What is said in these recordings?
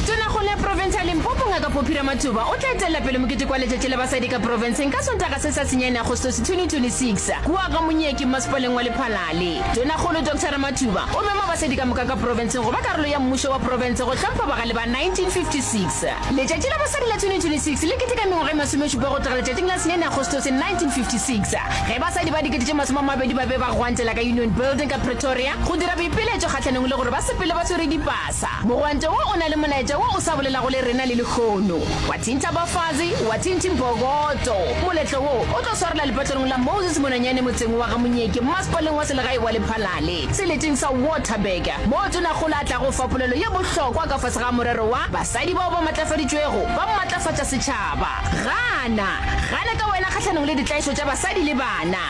Tonakgolo ya profense ya Limpopo Ngaka Poppy Ramathuba o tla etelela pele mokete kwa Letšatši la Basadi ka Profenseng ka Sontaga se sa senyane Agostose 2026 kua ga Monyeki Mmasepaleng wa Lephalale. Tonakgolo Doctor Ramathuba o mema basadi ka moka ka profenseng go ba karolo ya mmušo wa profense go hlompha bagale ba 1956. Letšatši la Basadi la 2026 le keteka mengwaga e masomešupa go tloga letšatšing la senyane Agostose 1956 ge basadi ba dikete tše masome a mabedi ba be ba gwantela ka Union Building ka Pretoria Go dira boipiletšo kgahlanong le gore ba sepele ba swere dipasa. Mogwante wo o na le molaetša wo o sa bolelago le rena le lehono. Wathinta Bafazi, Wathinti Mbokoto. Moletlo wo o tlo swarela lepatlelong la Moses Mononyane motseng wa ga Monyeke mmasepaleng wa selegae wa Lephalale, seleteng sa Waterberg, moo Tonakgolo a tlago fa polelo ye bohlokwa ka fase ga morero wa Basadi bao ba matlafaditšwego ba mmatlafatša setšhaba. Gana! Gana ka wena kgahlanong le ditlaišo tša basadi le bana!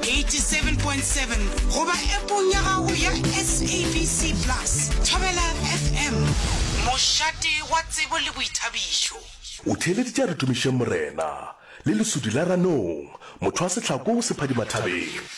87.7 goba Appong ya gago ya SABC Plus. Thobela FM, mošate wa tsebo le boithabišo. O theeleditše a re tumišeng Morena, le lesudi la ranong, motho wa sehlako o sephadimathabeng.